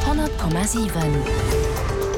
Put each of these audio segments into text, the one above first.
100,7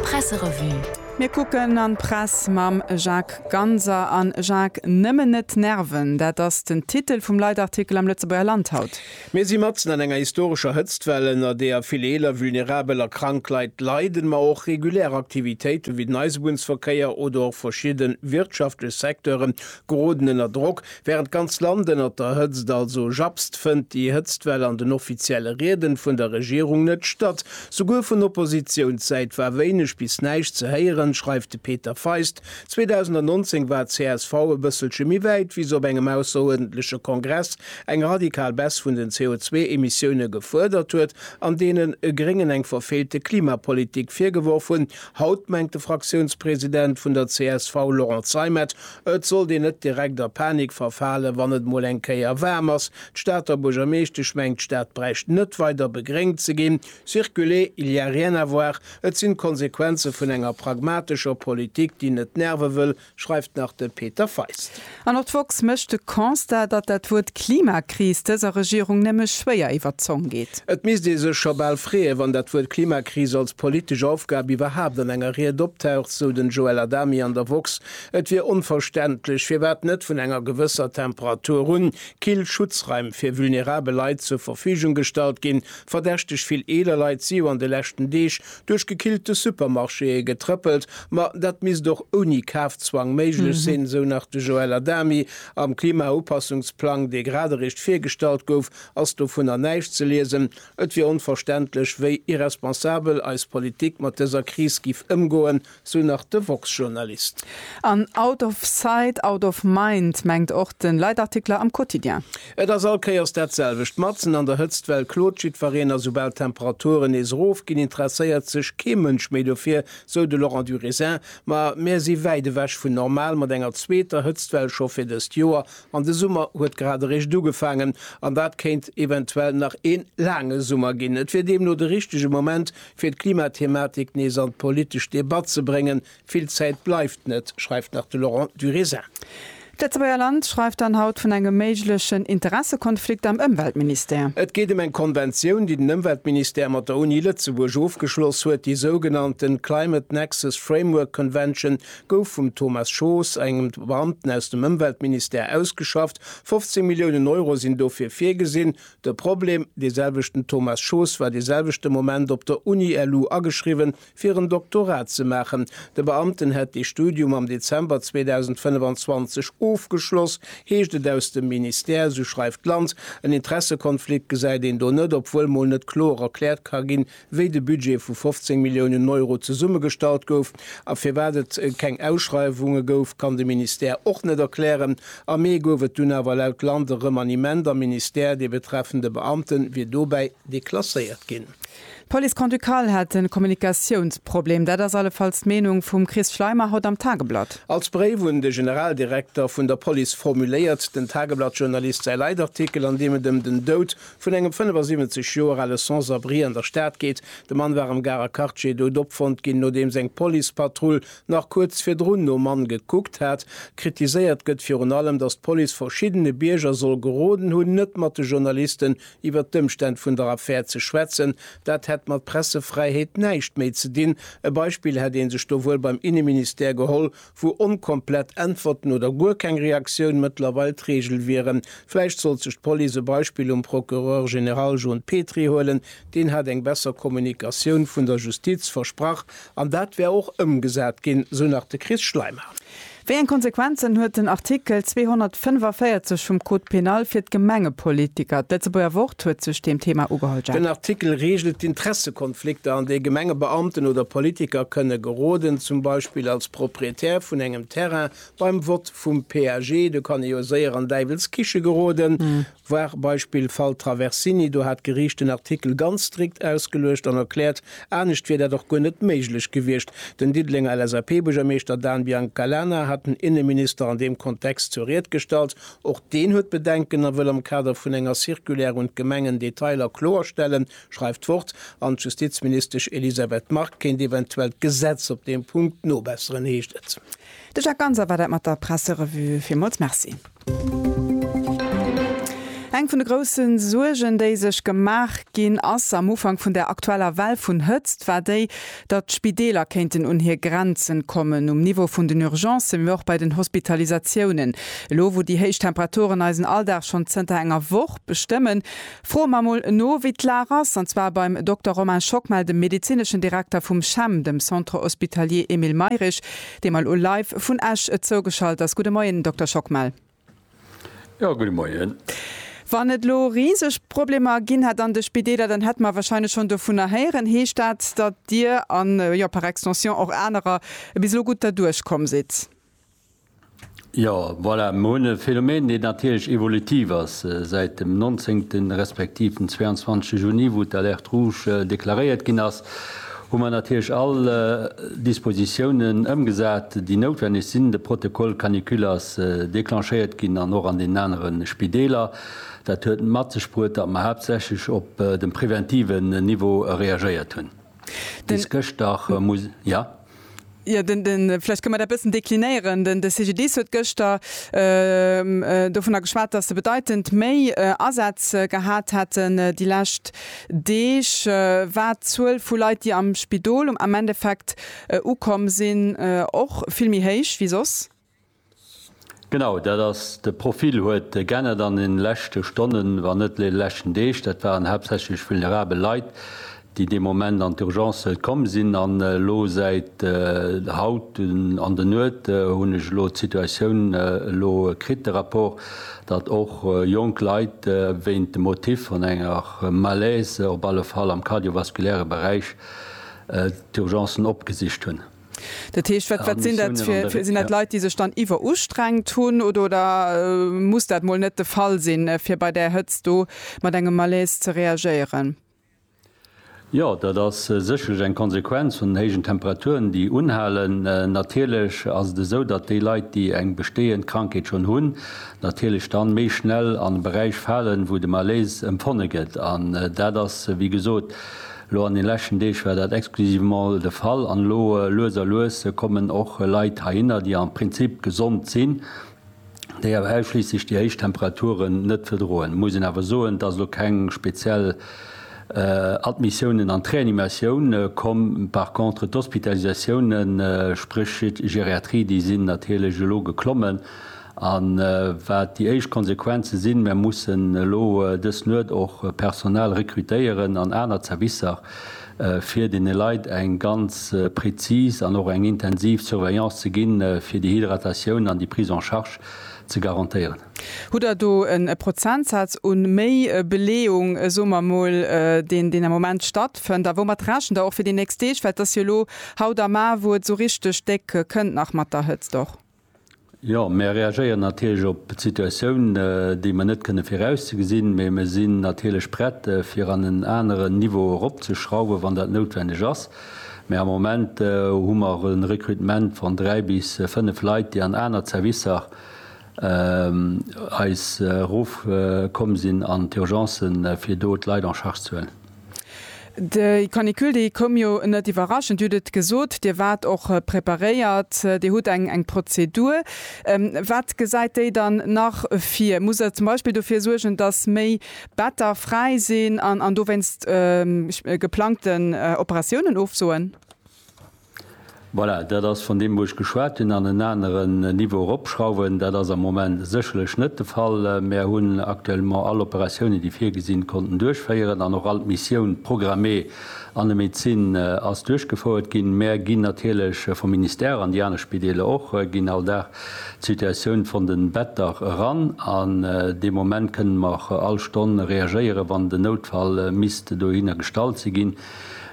Presserevue. Mir kucken an d'Press mam Jacques Ganser. A Jacques, Nëmmen net nerven, dat ass den Titel vum Leitartikel am Lëtzebuerger Land haut. Mir si matzen an enger historescher Hëtztwell, ënner deeër vill eeler, vulnerabel a krank Leit leiden, ma och regulär Aktivitéiten, wéi den Eisebunnsverkéier oder och verschidden wirtschaftlech Secteuren, geroden ënner Drock. Während d'ganz Land ënnert der Hëtzt also japst, fënnt déi Hëtztwell an den offizielle Rieden vun der Regierung net statt. Souguer vun Oppositiounssäit war wéineg bis näischt ze héieren, schreift de Peter Feist. 2019 war csv e bësselche méi wäit, wéi se op engem ausseruerdentleche Kongress eng radikal Baisse vun den CO2-Emissioune gefuerdert huet an deenen Gréngen eng verfeelte Klimapolitik virgeworf hunn. Haut mengt de Fraktiounspresident vun der csv Laurent Zeimet, Et sollt een net direkt a Panik verfalen, wann et mol eng Kéier waarm ass. D'Stater Buergermeeschtesch mengt, d'Stad bräicht net weider begréngt ze ginn. Circuler, il y a rien à voir, et sinn d'Konsequenze vun enger pragmatescher Politik, déi net nerve wëll, schreift nach de Peter Feist. An och d'woxx mécht de Constat, datt dat Wuert Klimakris dëser Regierung nëmme schwéier iwwer d'Zong geet. Et misst ee sech scho bal freeën, wann dat Wuert Klimakris als politesch Aufgab iwwerhaapt an enger Ried optaucht, sou den Joël Adami an der woxx. Et wier onverständlech, firwat net vun enger gewësser Temperatur un kill Schutzraim fir vulnerabel Leit zur Verfügung gestallt ginn. Verdächteg vill eeler Leit si jo an de leschten Deeg duerch gekillte Supermarchéë getrëppelt. Ma dat misst och ouni Kafzwang méiglech sinn, esou nach de Joël Adami. Am Klimaupassungsplang, dee grad eréischt virgestallt gouf, ass dovunner näischt ze liesen. Et wier onverständlech, wéi irresponsabel eis Politik mat dëser Kris giff ëmgoen, Sou nach de Woxx-Journalist. An out of sight, out of mind mengt och de Leitartikler am Quotidien. Et ass all Kéiers dat selwecht. Matzen an der Hëtzt, well klot jiddwereen, a soubal d'Temperaturen nees erof ginn, interesséiert sech kee Mënsch méi dofir, sou de Laurent Durisin. Ma mär si wäit ewech vun normal mat enger zweeter Hëtztwell scho fir dëst Joer. An de Summer huet grad eréischt ugefaangen. An dat kéint eventuell nach ee laange Summer ginn. Et wier deemno de richtege Moment fir d'Klimathematik nees an d'politesch Debatt ze bréngen. Vill Zäit bleift net, schreift nach de Laurent Durézin. D'Lëtzebuerger Land schreift dann haut vun engem méiglechen Interessekonflikt am Ëmweltministère. Et geet ëm eng Konventioun, déi den Ëmweltministère mat der Uni Lëtzebuerg ofgeschloss huet. Déi sougenannte Climate Nexus Framework Convention gouf vum Thomas Schoos, engem Beamten aus dem Ëmweltministère, ausgeschafft. 15 Milliounen Euro sinn dofir virgesinn. De Problem, dee selwechten Thomas Schoos war de selwechte Moment op der Uni-LU ageschriwwen, fir en Doktorat ze maachen. De Beamten hätt dee Studium am Dezember 2025 ofgeschloss, heescht et aus dem Ministère, esou schreift d'Land. En Interessekonflikt gesäit een do net, obwuel mol net kloer erkläert ka ginn, wéi de Budget vu 15 Milliounen Euro zesummegestallt gouf a firwat et keng Ausschreiwunge gouf, kann de Ministère och net erklären. Am Mee gouf et dunn awer laut Land e Remaniement am Ministère, dee betreffende Beamte wier dobäi deklasséiert ginn. D'Police grand-ducale hätt e Kommunikatiounsproblem, dat ass allefalls d'Meenung vum Chris Schleimer haut am Tageblatt. Als Bréif un de Generaldirekter vun der Police formuléiert den Tageblatt-Journalist säi Leitartikel, an deem et ëm den Doud vun engem 75 Joer ale Sans-abri an der Stad geet. De Mann war am Garer Quartier dout opfonnt ginn, nodeems eng Policepatrull nach kuerz virdrun nom Mann gekuckt hat. Kritiséiert gëtt virun allem, datt d'Police verschiddene Bierger soll geroden hunn, net mat de Journalisten iwwert d'Ëmstänn vun der Affär ze schwätzen. Dat hätt mat Pressefräiheet näischt méi ze dinn. E Beispill hätt ee sech do wuel beim Inneministère geholl, Vu onkomplett Äntwerten oder guer keng Reaktioun mëttlerweil d'Regel wieren. Vläicht sollt sech d'Police e Beispill um Procureur général John Petry huelen. Deen hat eng besser Kommunikatioun vun der Justiz versprach an dat wär och ëmgesat ginn, sou nach de Chris Schleimer. Wéi eng Konsequenzen huet den Artikel 245 vum Code pénal fir d'Gemengepolitiker? D'Lëtzebuerger Wort huet sech deem Thema ugeholl. Jeff. Den Artikel reegelt d'Interesse. Flikter, an déi Gemengebeamten oder Politiker kënne geroden, zum Beispill als Proprietär vun engem Terrain beim Vott vum PAG, do kann ee jo séier an däiwels Kiche geroden, voir Beispill Fall Traversini, do hat d'Geriicht den Artikel ganz strikt ausgeluecht an erkläert, anescht wier dat och guer net méiglech gewiescht. Den Diddelenger LSAP-Buergermeeschter Dan Biancalana hat den Inneminister an deem Kontext zur Ried gestallt. Och deen huet Bedenken a wëll am Kader vun enger Circulaire un d'Gemengen Detailer kloerstellen, schreift d'Wort, an d'Justizministesch Elisabeth Margue kéint eventuell d'Gesetz op deem Punkt nobesseren, heescht et. De Jacques Ganser war dat mat der Presserevue. Villmools Merci. Eng vun de grousse Suergen, déi sech gemaach ginn ass am Ufank vun der aktueller Well vun Hëtzt, war déi, datt d'Spideeler kéinten un hir Grenzen kommen, um Niveau vun den Urgencen, mee och bei den Hospitalisatiounen. Elo, wou déi héich Temperaturen eisen Alldag schonn zënter enger Woch bestëmmen, Froe mer mol no, wéi d'Lag ass, an zwar beim Dokter Romain Schockmel, dem medezineschen Direkter vum CHEM, dem Centre Hospitalier Emile Mayrisch, dee mer elo live vun Esch zougeschalt ass. Gudde Moien, Dokter Schockmel. Jo, gudde Moien. Wann et elo riseg Problemer ginn hätt an de Spideeler, dann hätte mer wahrscheinlech schonn dovunner héieren. Heescht dat, datt Dir an, jo, par extension och anerer, bis elo gutt derduerch komm sidd? Jo, voilà, mer hunn e Phänomen, deen natierlech evolutiv ass. Säit dem 19 respektiv dem 22 Juni, wou d'Alerte rouge deklaréiert ginn ass, hu mer natierlech all Dispositiounen ëmgesat, déi noutwenneg sinn. De Protocole canicule ass declenchéiert ginn an och an deenen anere Spideeler. Dat huet mat sech bruet, datt mer haaptsächlech op dem preventiven Niveau reagéiert hunn. Bis gëschter, muss, jo? Jo, den, den, vläicht kënne mer dat e bëssen deklinéieren. Den, de CGDIS huet gëschter dovunner geschwat, dass se bedeitend méi Asätz gehat hätten déi lescht Deeg, wat d'Zuel vu Leit, déi am Spidol am Endeffekt ukomm sinn, och vill méi héich wéi soss. Genau dat ass de Profil huet geännert an den leschte Stonnen, wann net den leschten Deeg. Dat waren haaptsächlech vulnerabel Leit, déi dee Moment an d'Urgence komm sinn. An elo säit haut an de Nuet hunn ech elo d'Situatioun elo kritt, de Rapport, datt och jonk Leit wéint dem Motif vun enger Malaise, op alle Fall am kardiovaskuläre Beräich, d'Urgencen opgesicht hunn. Dat heescht, wat, wat sinn dat fir, fir, sinn dat Leit, déi sech dann iwwerustrengt hunn oder, oder muss dat mol net de Fall sinn, fir bei där Hëtzt do mat engem Malaise ze reagéieren? Jo, dat ass sécherlech eng Konsequenz vun den héijen Temperaturen, déi unhalen. Natierlech ass et esou, datt déi Leit, déi eng bestehend Krankheet schonn hunn, natierlech dann méi schnell an e Beräich falen, wou de Malaise empfonne gëtt. An dat ass, wéi gesot, Elo an den leschten Deeg war dat exclusivement de Fall an elo lues a lues kommen och Leit heihinner, déi am Prinzip gesond sinn, déi awer ausschliisslech déi héich Temperaturen net verdroen. Et muss een awer soen, et ass elo keng speziell Admissiounen an d'Reanimatioun komm. Par contre d'Hospitalisatiounen, spréch Geriatrie, déi sinn natierlech elo geklommen A wat déi éischt Konsequenze sinn, Mir mussen elo dës Nuet och Personal rekrutéieren an aner Zerwisser, fir deene Leit eng ganz prezis an och eng intensiv Surveillance ze ginn, fir déi Hydratatioun an déi Prise en charge ze garantéieren. Hutt Der do e Prozentsaz u méi Beleeung, soe mer emol, deen deen am Moment stattfënnt? A woumat rechent Der och fir déi nächst Deeg? Well et ass jo elo haut a mar, wou et esou richteg déck kënnt nach mat der Hëtzt och. Jo, mir reagéieren natierlech op d'Situatioun, déi mer net kënne virausgesinn, mee mir sinn natierlech prett, fir an en aneren Niveau eropzeschrauwen, wann dat noutwendeg ass. Mee am Moment hu mer e Rekrutement van dräi bis fënnf Leit, déi an aner Zerwisser eis erofkomm sinn an d'Urgencen, fir do d'Leit en charge ze huelen. Déi Canicule, déi koum jo net iwwerraschend. Dir hutt et gesot, Dir waart och preparéiert, Dir hutt eng Prozedur. Wat gesäit déi dann nach vir? Muss Der zum Beispill dofir suergen, datt méi Better fräi sinn an dowéinst geplangten Operatiounen ofsoen? Voilà, dat ass vun deem, wou ech geschwat hunn, an en aneren Niveau eropschrauwen. Dat ass am Moment sécherlech net de Fall. Mär hunn actuellement all Operatiounen, déi virgesi konnten duerchféieren, an och all d'Missioun programmée an der Medezin ass duerchgefouert ginn. Mär ginn natierlech vum Ministère, an déi aner Spideeler och, ginn all Dag d'Situatioun vun de Better eran. An dee Moment kënnen mer och all Stonn reagéieren, wann den Noutfall misst dohinner gestallt si ginn.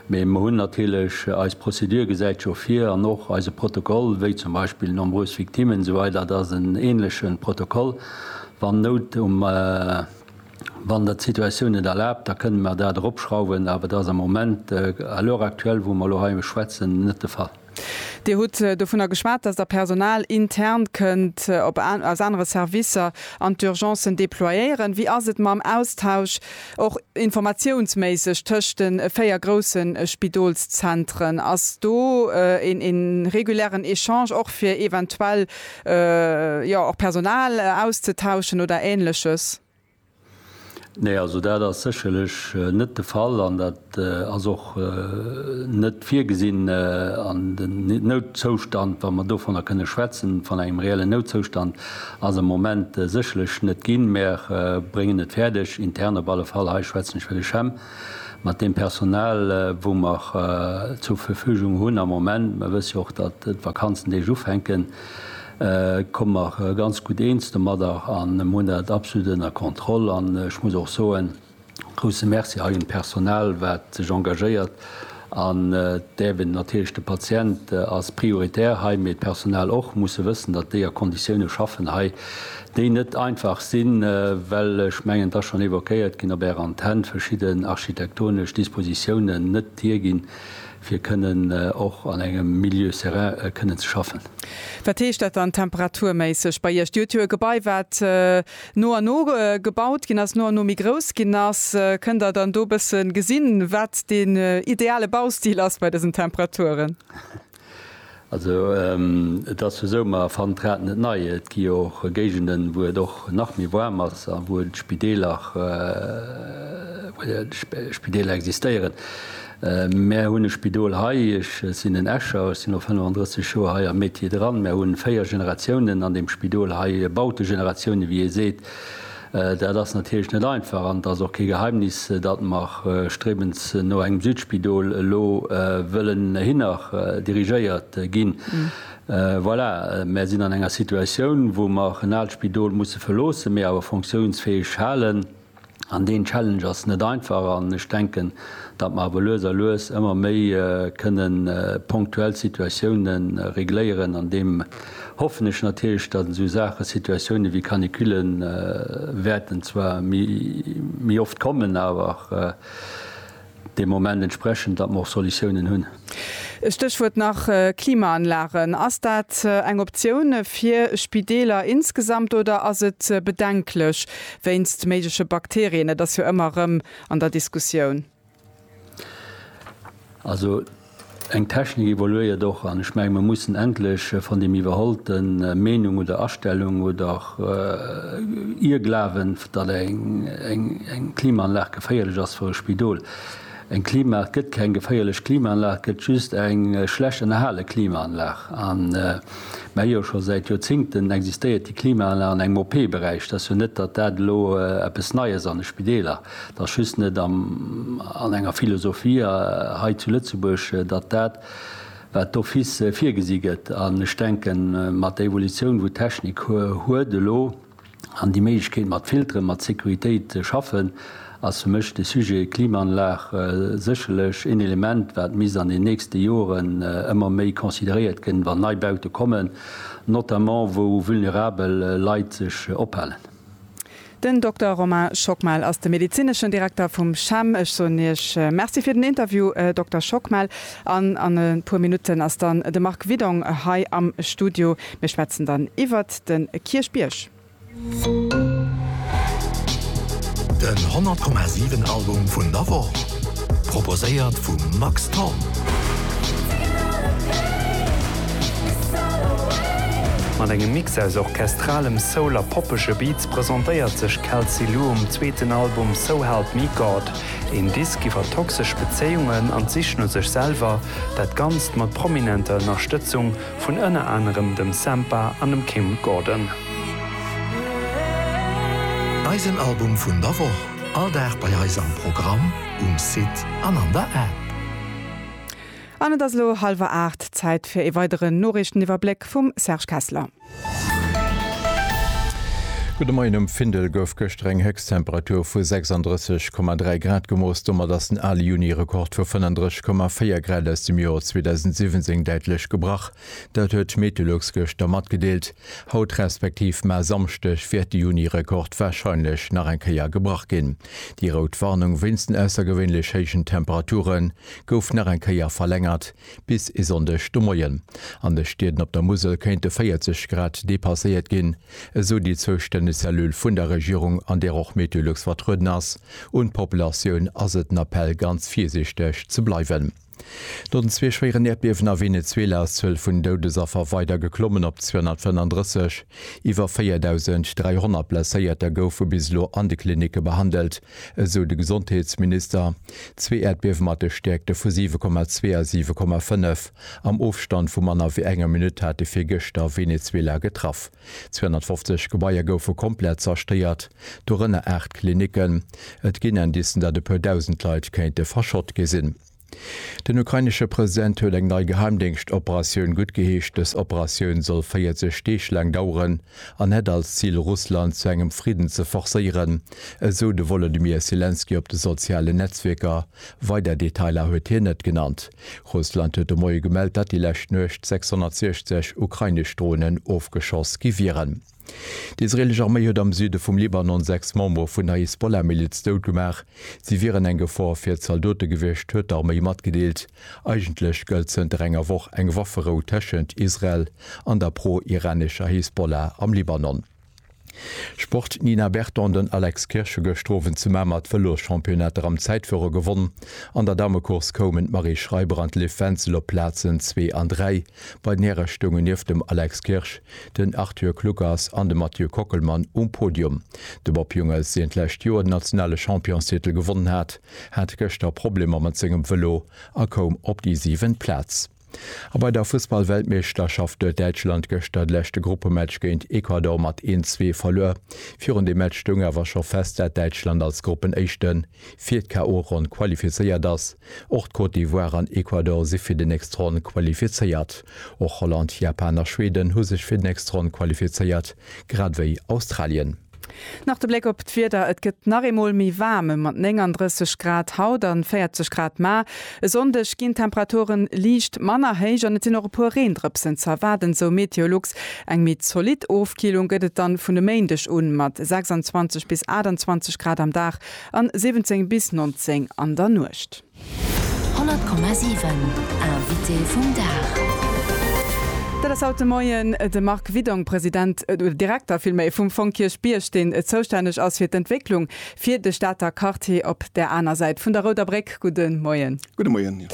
Mee mer hunn natierlech, eis Prozedur gesäit scho vir, an och eise Protokoll, wéi zum Beispill nombreuses victimes esou weider, dat ass en ähnleche Protokoll, wann Nout um, wann dat d'Situatioun et erlaabt, da kënnen mer dat eropschrauwen, awer et ass am Moment, à l'heure actuelle wou mer elo hei schwätzen, net de Fall. Dir hutt dovunner geschwat, dass Der Personal intern kënnt aus anere Servicer an d'Urgencen déployéieren. Wéi ass et mam Austausch, och informatiounsméisseg, tëscht de véier grousse Spidolszentren? Ass do een regulären Echange och fir eventuell, jo, och Personal auszetauschen oder Ähnleches? Nee, also dat ass sécherlech net de Fall an dat ass och net virgesinn an den Noutzoustand, wa mer dovunner kënne schwätzen, vun engem reellen Noutzoustand ass am Moment sécherlech net ginn. Mer bréngen et fäerdeg, intern op alle Fall, hei schwätzen ech fir de CHEM, mat deem Personal, wou mer zur Verfügung hunn am Moment, mer wësse jo och, datt d'Vakanzendeeg ufänken, Ech komme mer ganz gutt eens domadder a hunn dat absolut ënner Kontroll. An ech muss och soen, grousse Merci hei un d'Personal, wat sech engagéiert an d'Äwen. Natierlech de Patient ass prioritär hei, mee d'Personal och, musse wëssen, datt déi a Konditioune schaffen hei, déi net einfach sinn, well ech mengen, et ass schonn évoquéiert ginn op Är Antenn, verschidden architektonesch Dispositiounen net hierginn, fir kënnen och an engem Milieu serein kënnen ze schaffen. Wat heescht dat dann temperaturméisseg bei Iech? Dir huet jo e Gebai wat no an no gebaut ginn ass, no an no méi grouss ginn ass. Kënnt Der dann do e bësse gesinn, wat deen ideale Baustil ass bei dësen Temperaturen? Also et ass jo esou, ma erfannt d'Rad net nei. Et gi jo och Géigenden, wou et och nach méi waarm ass a wou d'Spideeler, wou d'Spideeler existéieren. Mär hunn e Spidol hei, ech sinn en Escher, ech sinn no 35 Joer hei am Metier dran. Mär hu véier Generatiounen an deem Spidol hei, Bautegeneratioune wéi ee seet. Dat ass natierlech net einfach an et ass och kee Geheimnis, datt mer striewens no engem Südspidol elo wëllen hinner dirigéiert ginn. Voilà, mer sinn an enger Situatioun, wou mer en aalt Spidol musse verloossen, mee awer funktiounsfäeg halen. An deen Challenge ass net einfach an ech denken, datt mer awer lues a lues ëmmer méi kënnen ponktuell Situatiounen regléieren an deem. hoffen ech natierlech, datt esou Saachen, Situatioune wéi Canicule wäerten zwar méi oft kommen, awer de Moment entsprechen, datt mer och Solutiounen hunn. Stéchwuert nach Klimaanlagen. Ass dat eng Optioun fir Spideeler insgesamt oder ass et bedenklech wéinst méigleche Bakterien? Dat ass jo ëmmer erëm an der Diskussioun. Also eng Technik evoluéiert och an ech menge mir mussen endlech van dem iwwerholten Meenung oder Astellung oder Irrglawen, datt eng Klimaanlag geféierlech ass fir e Spidol. Eng Klima, et gëtt keng geféierlech Klimaanlag, et gëtt just eng schlecht ënnerhale Klimaanlag. An mir hu jo scho säit Joerzingten existéiert déi Klimaanlag an engem OP-Beräich. Et ass jo net, datt dat elo eppes Neies an de Spideeler Et ass just net an enger Philosophie hei zu Lëtzebuerg, datt dat, wat d'office virgesi gëtt, an ech denken, mat der Evolutioun, wou d'Technik huet elo, an déi Méiglechkeet mat Filteren, mat Sécuritéit ze schaffen, ass fir mech de Sujet Klimaanlag sécherlech een Element, wat misst an den nächste Joren ëmmer méi consideréiert ginn, wann nei Baute kommen, notamment wou vulnerabel Leit sech ophalen. Den Dokter Romain Schockmel ass de medezineschen Direkter vum CHEM. Ech soen Iech Merci fir den Interview, Dokter Schockmel. An an e puer Minutten ass dann de Marc Widong hei am Studio. Mir schwätzen dann iwwert de Kierchbierg. Den 100,7 Album vun der Woch. Proposéiert vum Max Thorn. Mat engem Mix aus orchestralem Soul a poppege Beats presentéiert sech Kelsey Lu um zweeten Album So Help Me God. Een Disk iwwer toxesch Bezéiungen an d'Sich no sech selwer, dat Ganzt mat prominenter Ënnerstëtzung vun ënner anerem dem Sampha an dem Kim Gordon. Eisen Album vun der Woch. All Dag bei eis am Programm, um Site an an der App. An et ass elo hallwer aacht, Zäit fir ee weideren Noriichteniwwerbléck vum Serge Kessler. Gudde Moien, Um Findel gouf gëschter eng Héchsttemperatur vu 36,3 Grad gemooss. Domat ass den ale Juni-Rekord vu 35,4 Grad aus dem Joer 2017 däitlech gebrach. Dat huet d'Metellux gëschter matgedeelt. Haut respektiv mar Samschdeg wäert de Juni-Rekord warscheinlech nach eng Kéier gebrach ginn. Déi rout Warnung wéinst den aussergewéinlech héijen Temperature gouf nach eng Kéier verlängert bis e Sonndeg de Moien. An de Stieden op der Musel kéinte 40 Grad depasséiert ginn, esou déi zoustänneg Cellule vun der Regierung, an där och Metellux vertrueden ass. Un d'Populatioun ass et en Appell ganz virsiichteg ze bleiwen. No den zwee schwéieren Äerdbiewen a Venezuela ass d'Zuel vun Doudesaffer weider geklommen op 235. Iwwer 4.300 Blesséierter goufe bis elo an de Klinicke behandelt, esou de Gesondheetsminister. Zwee Äerdbiewe mat de Stäerkte vu 7,2 a 7,5 am Ofstand vu manner wéi enger Minutt hate virgëschter Venezuela getraff. 250 Gebaier goufe komplett zerstéiert, dorënner aacht Klinicken. Et ginn Indicen, datt e puer Dausend Leit kéinte verschott gi sinn. Den ukrainesche President huet eng nei Geheimdéngschtoperatioun guttgeheescht. Dës Operatioun soll 40 Deeg laang daueren an hätt als Zil, Russland zu engem Fridden ze forcéieren, esou de Wolodymyr Selenskyj op de sozialen Netzwierker. Weider Detailer huet hien net genannt. Russland huet de Moie gemellt, datt déi lescht Nuecht 660 ukrainesch Dronen ofgeschoss gi wieren. D'israeelesch Arméi huet am Süde vum Libanon sechs Membere vun der Hisbollah-Miliz dout gemaach. Si wieren eng Gefor fir d'Zaldote gewiescht, huet d'Arméi matgedeelt. Eigentlech gëllt zënter enger Woch eng Wafferou tëschent Israel an der pro-iranescher Hisbollah am Libanon. Sport, D'Nina Berton an den Alex Kirsch hu gëscht Owend zu Mamer d'Vëloschampionnater am Zäitfuere gewonnen. An der Damecourse koumen d'Marie Schreiber an d'Liv Wenzel op d'Plazen zwee an dräi. Bei den Häre stoungen nieft dem Alex Kirsch den Arthur Kluckers an de Mathieu Kockelmann um Podium. De Bob Jungels, deen d'lescht Joer den nationale Championstitel gewonnen hat, hat gëschter Problemer mat sengem Vëlo a koum op déi siwent Plaz. A bei der Fussballweltmeeschterschaft huet Däitschland gëschter de leschte Gruppematch géint Ecuador mat een, zwee verluer. Virun dem Match stoung awer scho fest, dat Däitschland als Gruppenéischte fir d'KO-Ronn qualifizéiert ass. Och d'Côte d'Ivoire an Ecuador si fir déi nächst Ronn qualifizéiert. Och Holland, Japan a Schweden hu sech fir d'nächst Ronn qualifizéiert, grad ewéi Australien. Nach de Bléck op d'Wieder, Et gëtt nach eemol méi waarm, ëm mat 39 Grad haut an 40 Grad mar. E Sonndeg ginn d'Temperaturen liicht manner héich an et sinn och e puer Reendrëpsen ze erwaarden, sou Meteolux. Eng méi zolidd Ofkillung gëtt et dann vun e Méindeg un, mat 26 bis 28 Grad am Dag an 17 bis 19 an der Nuecht. 100,7 Invité vum Dag. Dat ass haut de Moien de Marc Widong, President, Direkter villméi, vum Fong Kierchbierg, deen zoustänneg ass fir d'Entwécklung, fir de Stater Quartier op där aner Säit vun der Rouder Bréck. Gudde Moien. Gudde Moien.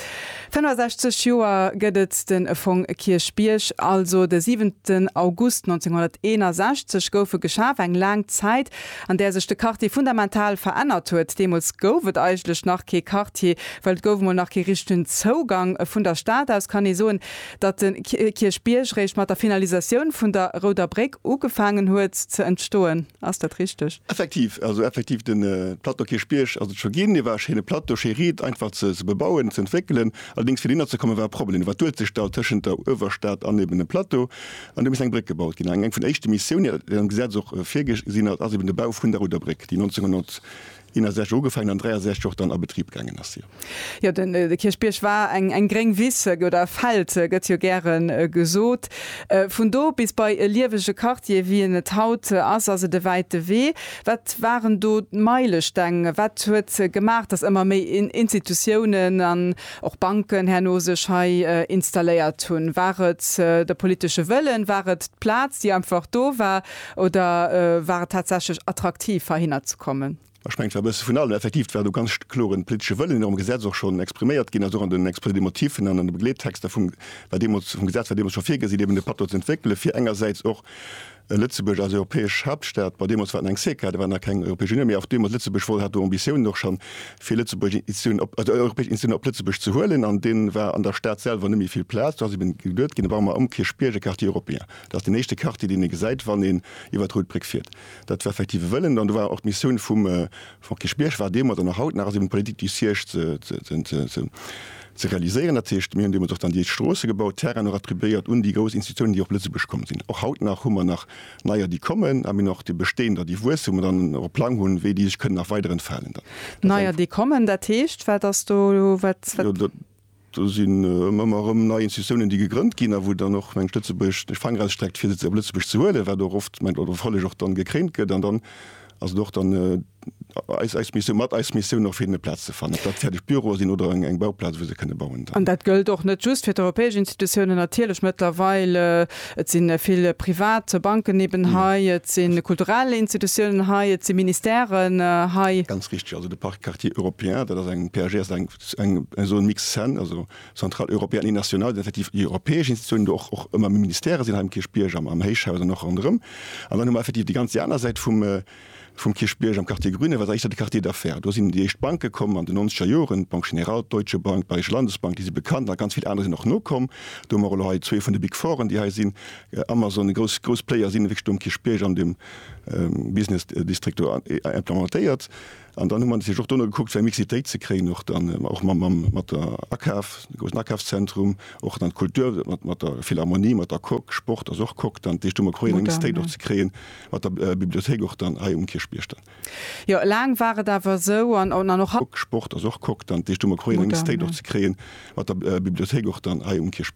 65 Joer gëtt et de Fong Kierchbierg, also de siwenten August 1961 gouf e geschaf, eng laang Zäit, an där sech de Quartier fundamental verännert huet. Deemools gouf et eigentlech nach kee Quartier, well et gouf emol nach kee richtegen Zougang. Vun der Stad aus kann ee soen, datt de Kierchbierg réischt mat der Finalisatioun vun der Rouder Bréck ugefaangen huet ze entstoen. Ass dat richteg? Effektiv, also effektiv de Plateau Kierchbierg ass et scho ginn. Et war e schéine Plateau, schéi riit, einfach ze bebauen, ze entwéckelen. Allerdéngs fir dohinner ze kommen, war e Problem. Wat duelt sech da tëschent der Uewerstad an eeben dem Plateau? An do misst eng Bréck gebaut ginn. Eng vun de éischte Missiounen, déi am Gesetz och virgesinn ass, ass eben de Bau vun der Ruderbréck, déi 1961 ugefaangen an 1963 och dann a Betrib gaangen ass. Jo, de Kierchbierg war eng gréng Wiss, oder e Feld gëtt jo gäre gesot. Vun do bis bei e liewege Quartier, wéi en et haut ass, ass et e wäite Wee. Wat waren do d'Meilesteng? Wat huet gemaach, datt ëmmer méi Institutiounen an och Banken herno sech hei installéiert hunn. War et de politesche Wëllen, war et d'Plaz, déi einfach do war, oder war et tatsächlech attraktiv, heihinner ze kommen? Ech mengen, et war e bësse vun allem. Effektiv, et war do ganz kloren politesche Wëllen, deen am Gesetz och schonn expriméiert ginn ass, och an den Exposés des motifs an an de Begleedtexter vum, war deemools, vum Gesetz war deemools scho virgesinn, eben de Patt do ze entwéckelen, fir engersäits och Lëtzebuerg als europäesch Haaptstad, ma deemools war et nach eng CECA, do war nach keng Europäesch Unioun, mee och deemools Lëtzebuerg wollt, hat do Ambitiounen och schonn, fir Lëtzebuerg Institutionen op, also europäesch Institutionen op Lëtzebuerg ze huelen. An do war an der Stad selwer net méi vill Plaz, do ass eben geduet ginn, da baue mer am Kierchbierg e Quartier européen. Dat ass deen éischte Quartier, deen ee gesäit, wann een iwwer d'Rout Bréck fiert. Dat war effektiv e Wëllen an do war och d'Missioun vum Frank Kirschbieg war deemools an och haut nach ass eben d'Politik déi Siège ze ze realiséieren. Dat heescht, mir hunn deemools och dann déi éischt Stroosse gebaut, Terrainen och attribuéiert un déi grouss Institutiounen, déi op Lëtzebuerg komm sinn. Och haut nach hu mer nach neier déi kommen a mir hunn och déi Bestehender déi wuessen, wou mer dann och e Plang hunn, wéi déi sech kënnen nach weiderentfalen dann. Neier déi kommen, dat heescht wat ass do, wat? Do sinn ëmmer erëm nei Institutiounen, déi gegrënnt ginn a wou dann och, mengen ech, Lëtzebuerg de Fanger ausstreckt, fir se op Lëtzebuerg ze huelen, wat och oft, mengen ech, oder hoffälleg och dann gekréint gëtt. An dann ass et och dann eis, eis Missioun, mat eis Missioun och fir hinnen e Plaz ze fannen, ob dat fäerdeg Büroe sinn oder eng Bauplaz, wou se kënne bauen dann. An dat gëllt och net just fir d'europäesch Institutiounen natierlech mëttlerweil. Et si vill privat Banken eben hei, et si kulturell Institutiounen hei, et si Ministèren hei. Ganz richteg, also de Parc Quartier Européen, dat ass eng PAG, ass eng eng esou en Mix sen, also centrale européenne et nationale, déi effektiv déi europäesch Institutionen, do och och ëmmer méi Ministèrë sinn hei am Kierchbierg, am am Héichhaus an och ronderëm. An dann hu mer effektiv déi ganz déi aner Säit vum vum Kierchbierg am Quartier Grüne, wat éischter de Quartier d'affaires. Do sinn déi éischt Banke komm an de nonzeger Joren, d'Banque Générale, d'Deutsche Bank, d'Bayerische Landesbank, déi si bekannt a ganz vill aner sinn och nokomm. Do hu mer elo hei zwee vun de Big Foren, déi hei sinn, Amazon, grouss grouss Player sinn wierklech do am Kierchbierg an deem Business District do implementéiert. An dann hu mer natierlech och dono gekuckt, fir eng Mixitéit ze kréien, och dann och mat der Akaf, de groussen Akafszentrum, och dann d'Kultur mat der Philharmonie, mat der Coque, Sport ass och Coque dann. Dat heescht, do hu mer probéiert, eng Mixitéit och ze kréien mat der Bibliothéik och dann hei um Kierchbierg dann. Jo, laang war et awer esou an an och haut. Coque, Sport ass och Coque dann. Dat heescht, do hu mer probéiert, eng Mixitéit och ze kréien mat der Bibliothéik och dann hei um Kierchbierg.